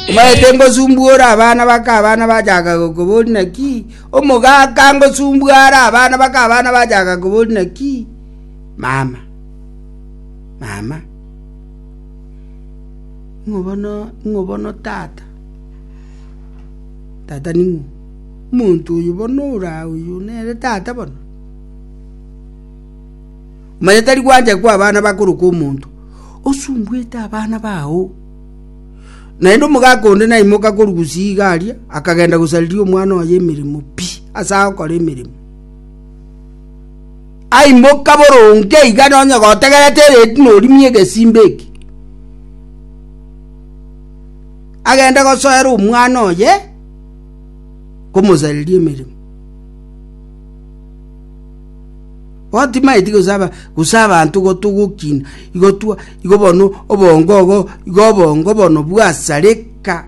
Omaete ngosumbuora abana baka abana bachaka gokobori naki omogaka ngosumbuara abana baka abana bachaka kobori naki mama mama ng'obono ng'obono tata tata ning'o omonto oyo bono ora oyo nere tata bono Manya tari gwancha kw'abana bakorokwa omonto osumbuete abana bao. Naende omogaka onde naimoka korwa gusii iga aria, akagenda gosariria omwana oye emeremo pi ase agokora emeremo. Aimoka boronge iga nonye gotegerete ereti norimie egesimba eki, agende gosoera omwana oye komosariria emeremo. Bono timaeti gose aba, gose abanto gotogokina, igo twa, igo bono obongo ogo, igo obongo bono bwasareka.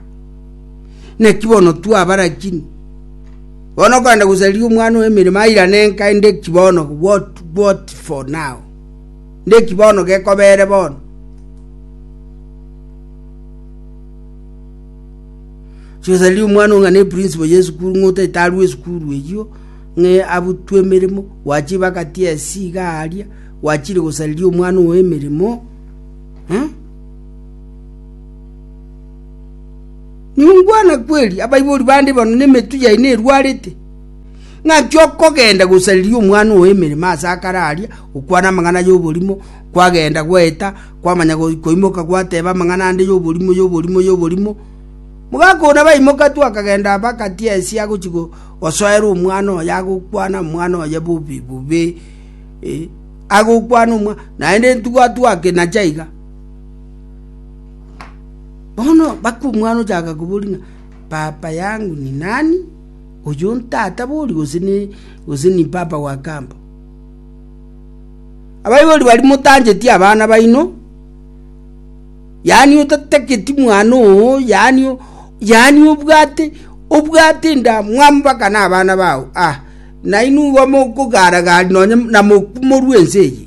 Naki bono twabarakini. Bono okogenda gosariria omwana oye emeremo airane enka inde ki bono, what, what for now? Inde ki bono gekobere bono? Chigosariria omwana ong'ana eprinciple ya esukuru ng'otaete arue esukuru eyio, ng'e abutwe emeremo, gwachire bagati esii iga aaria, gwachire gosareria omwana oo emeremo, eh? Ningwana kweri abaibori bande bano nemetu yaino erwarete ng'aki okogenda gosareria omwana oo emeremo ase akare aria gokwana amang'ana y'oborimo kwagenda gwaeta kwamanya go- koimoka gwateba amang'ana ande y'oborimo y'oborimo y'oborimo mogaka ona baimoka tu akagenda bagati esia agochi go- Osoere omwana oye agokwana omwana oye bobe bobe eh, agokwana omwana naende ntugwatwake nacha iga bono baka omwana ochaka kobori ng'a papa yangu ni nani oyo ntata bori gose ni gose ni papa wa kambo abaibori bari motancheti abana baino yaani otatageti mwana oo, yaani, yaani obwate, obwate endamwamu mpaka nabana bao, ah, nainwe igo mokogaara-gaaria nonye namokwa morue ense eye.